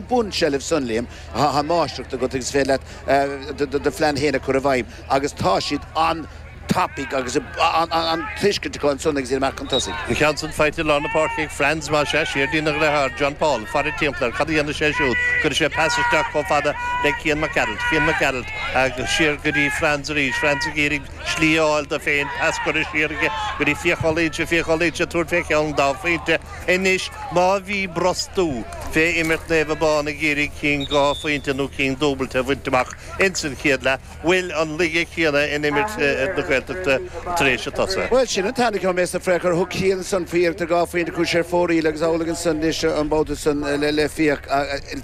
bun seilbh san, Liam. Tá máistreacht agat agus is féidir leat do phlean féin a chur i bhfeidhm agus tá siad an-tapaidh agus an-tuiscint acu ansan agus iad amach chun tosaigh. An ceann sin faighte i lár na páirce ag Franz, más ea, siar lena dhriotháir, John Paul. Faire timpeall air. Cad a dhéanfaidh sé siúd? Cuirfidh sé pas isteach chomh fada le Cian Mac Gearailt. Cian Mac Gearailt agus siar go dtí Franz arís. Franz ag iarraidh slí a fháil dó féin. Pas curtha siar aige go dtí Fiach Ó Loingsigh. Fiach Ó Loingsigh ag tabhairt fé cheann dá phointe. Anois, má bhí brostú fé imirt Naomh Abán ag iarraidh cinn dhá phointe nó cinn dúbailte a bhaint amach ins an chéad leath, bhfuil an laige chéanna in imirt na Gaeltachta tar éis an tsosa? Bhuel, sin an t-ainm a gheobhaidh mé as do phréachadh. Thug Cian ansan faoi iarracht ar dhá phointe chuaigh sé ar fóraoil agus amhlaidh ansan anois an babhta san le Fiach.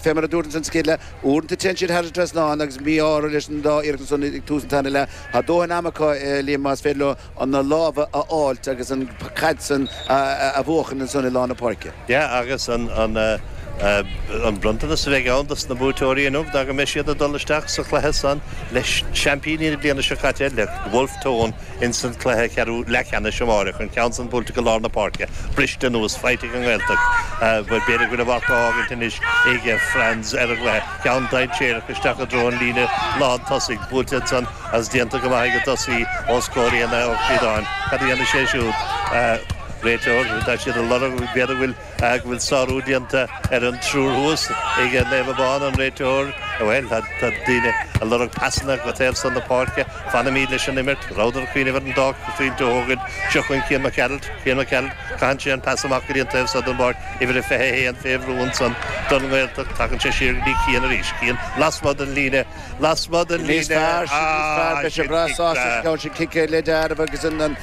Fé mar a dúrt ins an chéad leath, uaireanta téann siad thar an trasnán agus mí-ádh orthu leis an dá iarracht ansan ag tús an tarna leath. Tá dóthain ama acu, Liam, más féidir leo chun na lámha a fháilt agus an chaid san a bhuachan ansan i lár na páirce. Yeah agus an bronntanas a bheidh ann dos na buaiteoirí inniu ná go mbeidh siad ag dul isteach sa chluiche san le seaimpíní na bliana seo caite le Bhulf Tón ins an cluiche ceathrú leathcheannais amáireach an ceann san buailte go lár na páirce briste anuas faighte ag an nGaeltacht b'fhéidir go bhfuil a mharc á fhágaint anois ag Franz ar an gcluiche ceann dainséarach isteach i dtreo an líne lán tosaigh buailte ansan Is déanta go maith aige Dusty ó scór i Elaith Ó Críodáin. Cad a dhéanfaidh sé siúd? Réiteoir, Tá siad ag lorg, b'fhéidir go bhfuil, go bhfuil sárú déanta ar an triúr thuas ag Naomh Abán. An réiteoir, Bhuel, tá daoine ag lorg pasanna go taobh san na páirce. Fanfaimíd leis an imirt. Rabhadar ag cuimhneamh ar an dá phointe a thógaint. Seo chugainn Cian Mac Gearailt. Cian Mac Gearailt, caitheann sé an pas amach go dtí an taobh so den bpáirc, uimhir a 21, fé bhrú ansan don nGaeltacht. Tagann sé siar go dtí Cian arís. Cian, lasmuigh den líne. lasmuigh den líne A agus sin cic. Sin cic ar leith dearfa agus an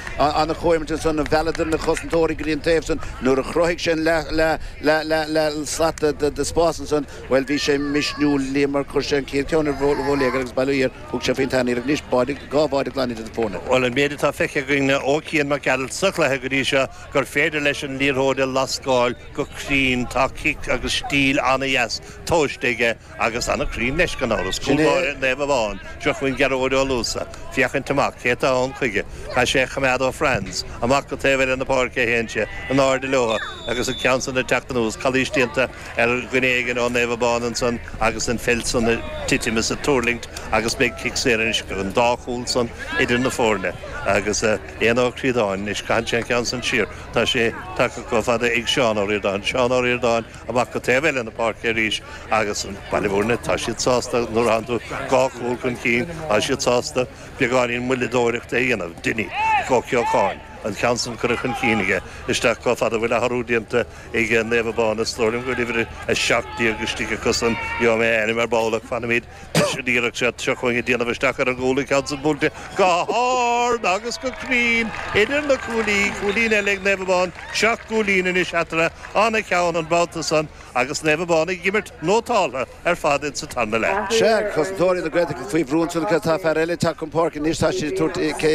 chomhimirt ansan a mhealladar na cosantóirí go dtí an taobh san. Nuair a chruthaigh sé an leath slat de spás ansan bhuel bhí sé misniúil Liam mar chuir sé an chéad cheann ar bhóiléagar agus bail o Dhia thug sé faoin tarna iarracht. Anois báide, dhá bháide glan idir na foirne. Bhuel an méid atá feicthe againn ó Cian Mac Gearailt sa chluiche go dtí seo gur féidir leis an liathróid a lascáil go cruinn. Tá cic agus stíl ana dheas tomhaiste aige. Agus an-chruinn leis, gan amhras. Cúlbáire Naomh Abán, Drochmhian Gearóid Ó Luasa, féachaint amach cé atá ann chuige. Caithfidh sé a choimeád ó Franz, amach go taobh eile na páirce a théann sé, in airde leotha, agus an ceann san ag teacht anuas, calaois déanta ar dhuine éigin ó Naomh Abán ansan agus an pheil san ag titim is ag tuirlingt agus beidh cic saor anois an dá chúl san idir na foirne agus Éanna Ó Críodáin anois, caitheann sé an ceann san siar, tá sé tagtha chomh fada ag Seán Ó Ríordáin, Seán Ó Ríordáin. amach go taobh eile na páirce arís agus Baile Mhúirne, tá siad sásta nuair a thagann tú dhá chúl chun cinn, tá siad sásta beagáinín moilleadóireachta a dhéanamh. Dinny, Joe Ceocháin, an ceann san curtha chun cinn aige, isteach chomh fada bhfuil athrú déanta ag Naomh Abán is dóigh liom go bhfuil uimhir a seacht déag istigh acusan, gheobhaidh mé a ainm ar ball ach fanfaimíd Anois an iarracht seo acu a déanamh isteach ar an gcúl an ceann san buailte go h-ard agus go cruinn idir na cuaillí, cúilín eile ag Naomh Abán, seacht gcúilín anois eatarthu ana cheann an babhta san agus Naomh Abán ag imirt nótáltha ar fad ins an tarna leath. Sea, cosantóirí na Gaeltachta faoi bhrú ansan agus tá fear eile ag teacht chun páirce anois, tá siad ag tabhairt cé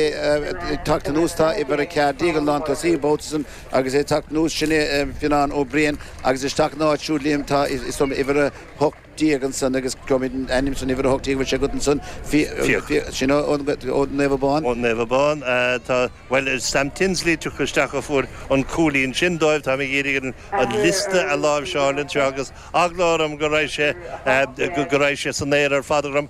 ag teacht anuas tá uimhir a ceathair déag an lántosaí an babhta san agus é ag teacht anuas sin é Fionnán Ó Briain agus isteach in a áit siúd Liam tá is dóigh liom uimhir a hocht déag ansan agus cad é an ainm atá ar uimhir a hocht déag bhfuil sé agat ansan. Sea. Sin ó Naomh Abán? Ó Naomh Abán. Tá, bhuel Sam Tinsley tagtha isteach a fuair an cúilín sin dóibh. Táim ag iarraidh an liosta a láimhseáil anseo agus eagla orm go raibh sé go raibh sé san aer ar fad agam.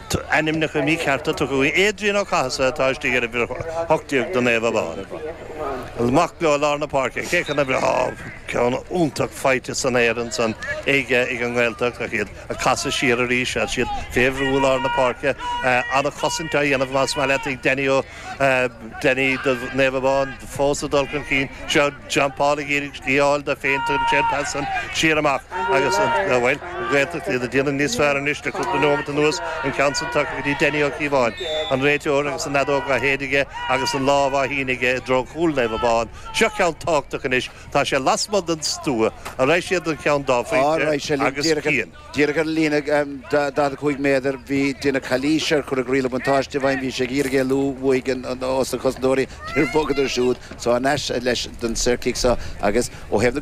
T, ainmneacha míchearta tugtha ann Aidan Ó Cathasaigh atá istigh uimhir 18 do Naomh Abán. Amach leo i lár na páirce. Cé chun a bhreith? Ceann iontach faighte san aer ansan aige ag an nGaeltacht ach iad a casadh siar arís is iad fé bhrú i lár na páirce. Ana chosaint á dhéanamh más maith leat ag Danny Ó Danny do Naomh Abán fós a dul chun cinn. Seo. Timpeall ag iarraidh slí a fháil dó féin tugann sé an pas san siar amach agus an, bhuel, an Ghaeltacht iad a déanamh níos fearr anois le cúpla nóimeat anuas, an ceann san tugtha go dtí Danny Ó Cíobháin, an réiteoir agus an fheadóg á shéideadh aige agus an lámh á shíneadh aige i dtreo chúl Naomh Abán. Seo ceann tábhachtach anois, tá sé lasmuigh den stua, an raghaidh siad don gceann dhá phointe agus Cian. Díreach ar an líne 45 méadar bhí deineadh calaois air, cuireadh riail an bhuntáiste i bhfeidhm, bhí sé ag iarraidh éalú uaidh ós na cosantóirí, níor bhogadar siúd so thar n-ais leis don saorchic so agus ó thaobh na.